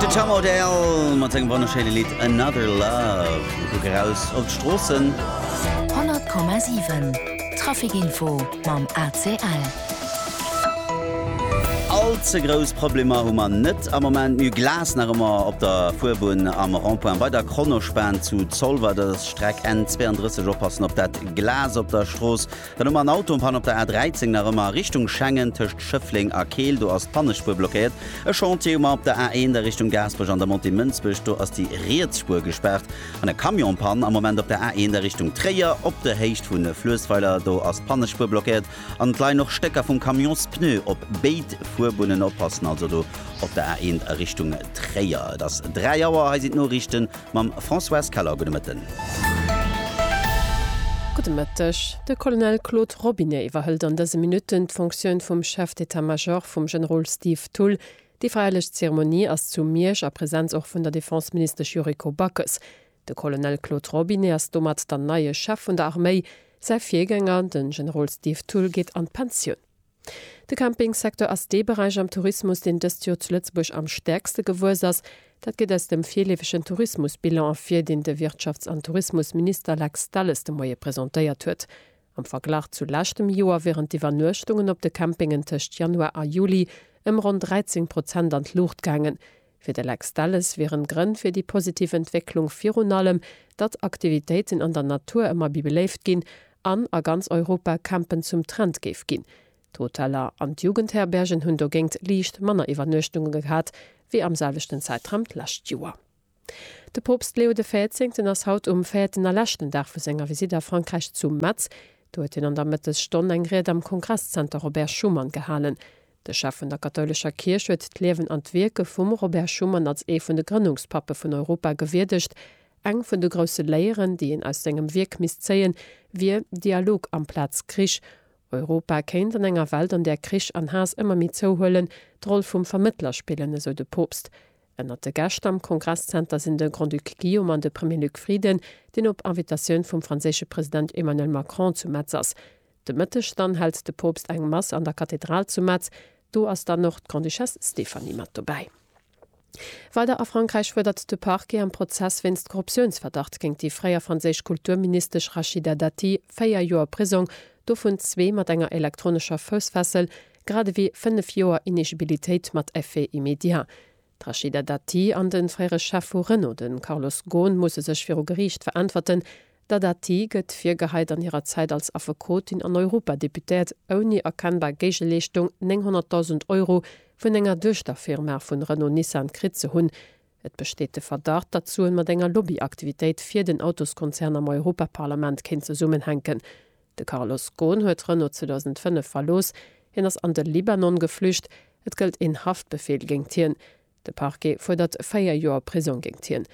De Tom Odell mat sengem wonnerschéine Lidd Another Love. Mir kucken eraus op d'Stroossen. 100,7 Traficinfo mam ACL. All ze grouss Problemer hu mer net am Moment. Mir hu Glas nach ëmmer op der Fuerbunn am Rond-point bei der Kronospan zu Zolwer. Dat ass Streck N 32. Oppassen op dat Glas op der Strooss. Dann hu mer en Autopann op der A 13 nach ëmmer a Richtung Schengen tëscht Schëffleng a Keel. Do ass d'Pannespuer blockéiert. E Chantier hu mer op der A 1 a Richtung Gaasperech an der Montée Mënsbech. Do ass déi riets Spuer gespaart. An e Camionpann am Moment op der A 1 a Richtung Tréier op der Héicht vu Fluessweiler. Do ass d'Pannespuer blockéiert an et leien och Stécker vum Camions-Pneu op béid Fuerbunnen. Oppassen also do op der A 1 a Richtung Tréier. Et ass 3 Auer. Hei sinn d'Noriichten. Mam Françoise Keller, gudde Mëtten. Gudde Mëtteg. De Colonel Claude Robinet iwwerhëlt an dëse Minutten d'Fonctioun vum Chef d'état major vum Generol Steve Thull. Déi feierlech Zeremonie ass zu Miersch a Presenz och vun der Defenseministesch Yuriko Backes. De Colonel Claude Robinet ass domat dann neie Chef vun der Arméi. Säi Virgänger, de Generol Steve Thull, geet an d'Pensioun. De Campingsecteur ass dee Beräich am Tourismus, deen dëst Joer zu Lëtzebuerg am stäerkste gewuess ass. Dat geet aus dem virleefegen Tourismusbilan ervir, deen de Wirtschafts an Tourismusminister Lex Delles de Moie presentéiert huet. Am Verglach zu leschtem Joer wieren d'Iwwernuechtungen op de Campingen tëscht Januar a Juli ëm ronn 13 Prozent an d'Luucht gaangen, Fir de Lex Delles wieren d'Grënn fir déi positiv Entwécklung virun allem, datt Aktivitéiten an der Natur ëmmer méi beléift ginn an a ganz Europa Campen zum Trend géif ginn. D'Hoteller an d'Jugendherbergen hunn dogéint liicht manner Iwwernuechtunge gehat wéi am selwechten Zäitraum d'lescht Joer. De Poopst Leo de Véierzéngten ass haut um véierten a leschten Dag vu senger Visitt a Frankräich zu Metz. Do huet hien an der Mëttesstonn eng Ried am Kongresszenter Robert Schuman gehalen. De Chef vun der kathoulescher Kierch huet d'Liewen an d'Wierke vum Robert Schuman als ee vun de Grënnungspappe vun Europa gewierdegt. Eng vun de grousse Léieren, déi een aus sengem Wierk misst zéien, wier, Dialog amplaz Krich. Europa kéint an enger Welt, an där Krich an Haass ëmmer méi zouhuelen, d'Roll vum Vermëttler spillen, esou de Poopst. Ënnert de Gäscht am Kongresszenter sinn de Grand-Duc Guillaume an de Premier Luc Frieden, deen op Invitatioun vum franséische President Emmanuel Macron zu Metz ass. De Mëtteg dann hält de Poopst eng Mass an der Kathedral zu Metz. Do ass dann och d'Grande-Duchesse Stéphanie mat dobäi. Weider a Frankräich fuerdert de Parquet am Prozess wéinst Korruptiounsverdacht géingt déi fréier franséisch Kulturministesch Rachida Dati véier Joer Prisong, dovun zwee mat enger elektronescher Foussfessel, grad ewéi fënnef Joer Inegibilitéit mat Effet immédiat. D'Rachida Dati an de fréiere Chef vu Renault, de Carlos Ghosn, musse sech viru Geriicht veräntwerten. D'Dati gëtt virgeheit, an hirer Zäit als Affekotin an Europadeputéiert ouni erkennbar Géigeleeschtung 900.000 Euro vun enger Duechterfirma vun Renault-Nissan kritt ze hunn. Et besteet de Verdacht, datt d'Suen mat enger Lobbyaktivitéit fir den Autoskonzern am Europaparlament kéint zesummenhänken. De Carlos Ghosn huet Renault 2005 verlooss. Hien ass an de Libanon geflücht. Et gëllt een Haftbefeel géingt hien. De Parquet fuerdert véier Joer Prisong géingt hien.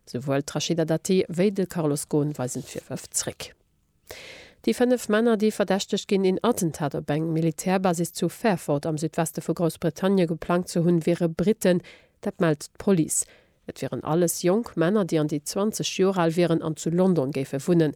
Souwuel d'Rachida Dati wéi de Carlos Ghosn weisen d'Virwërf zréck. Déi fënnef Männer, déi verdächtegt ginn, een Attentat op eng Militärbasis zu Fairford am Südweste vu Groussbritannie geplangt ze hunn, wiere Britten. Dat mellt d'Police. Et wieren alles jonk Männer, déi an déi 20 Joer al wieren an zu London géife wunnen.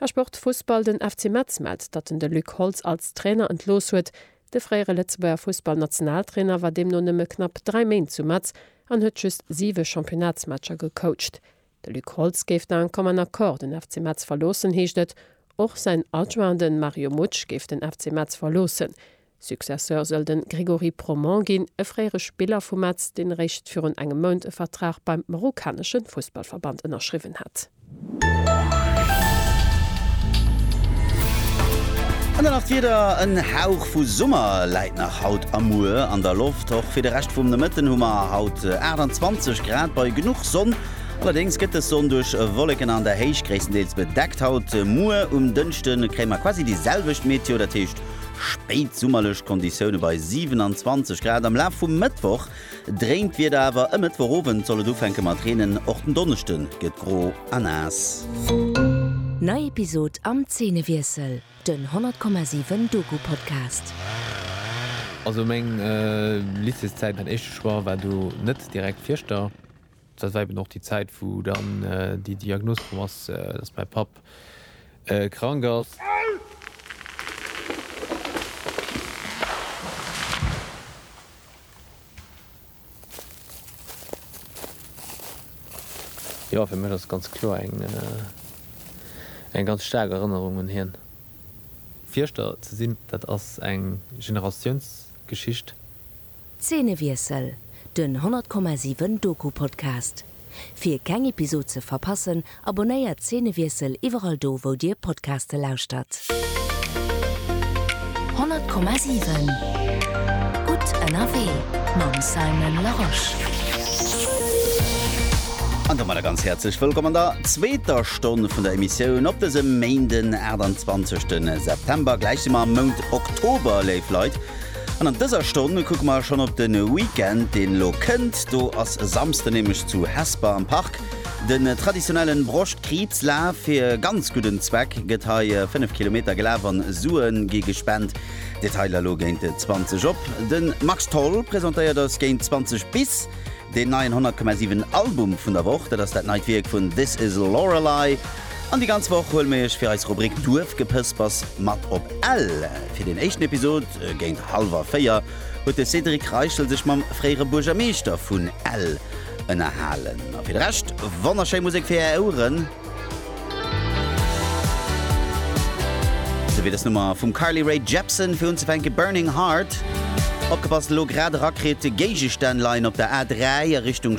A Sport, Fussball, Den FC Metz mellt, datt en de Luc Holtz als Trainer entlooss huet. De fréiere Lëtzebuerger Fussballnationaltrainer war deemno nëmme knapp 3 Méint zu Metz an huet just 7 Championnatsmatcher gecoacht. De Luc Holtz géif d'un commun accord den FC Metz verloossen, heescht et. Och säin Adjoint, de Mario Mutsch, géif den FC Metz verloossen. Successeur soll de Grégory Proment ginn, e fréiere Spiller vu Metz, deen eréischt virun engem Mount e Vertrag beim marokkanesche Fussballverband ënnerschriwwen hat. An dann nach d'Wieder, En Hauch vu Summer läit nach haut a muer an der Loft. Och fir de Rescht vum Nomëtten hu mer haut 28 Grad bei genuch Sonn. Allerdéngs gëtt dës Sonn duerch Wolleken an der Héicht gréisstendeels bedeckt. Haut muer um Dënschde kréie mer quasi déi selwecht Meteo, dat heescht Spéit summerlech Konditioune bei 27 Grad. Am Laf vum Mëttwoch dréint d'Wieder awer, e Mëttwochowend soll et ufänke mat reenen. Och den Donneschde gëtt gro a naass. Nei Episod am Zeenewiessel, den 100,7 Doku-Podcast. Also meng Lycéeszäit, mäin éischte Choix war do net direkt Fieschter. Dat war eben och déi Zäit, wou dann déi Diagnos komm ass, dass mäi Papp krank ass. Jo, fir mech ass et ganz kloer eng ganz staark Erënnerung un hien. Fierschter ze sinn, dat ass eng Generatiounsgeschicht. Zeenewiessel, den 100,7 Doku-Podcast. Fir keng Episod ze verpassen, abonnéiert Zeenewiessel iwwerall do wou dir Podcaste lauschtert. 100,7 Gutt ënnerwee mam Simon Larosche. An domadder ganz häerzlech wëllkomm an der zweeter Stonn vun der Emissioun op dësem Méinden 28 September. Gläich si mer am Mount Oktober, léif Leit. An an dëser Stonn kucke mer schonn op de Weekend, deen elo kënnt. Do ass e Samsden nämlech zu Hesper am Park de traditionellen Broschtkriibslaf. Fir e ganz gudden Zweck gëtt hei 5 Kilometer gelaf an Sue gi gespent. Detailer elo géint 20 op. De Max Tholl presentéiert eis géint 20 bis deen neien 100,7 Album vun der Woch. Dat ass dat neit Wierk vun This Is Lorelei. An déi ganz Woch huele mir iech fir eis Rubrik Duerfgepëspers mat op Ell. Fir den éischten Episod, géint hallwer 4, huet de Cédric Reichel sech mam fréiere Buergermeeschter vun Ell ënnerhalen. A fir de Rescht, wonnerschéi Musek fir är Oueren. Sou wéi dës Nummer vum Carly Rae Jepsen. Fir unzefänke Burning Heart. Opgepasst, elo grad erakritt, Géigestänn leien op der A3 a Richtung.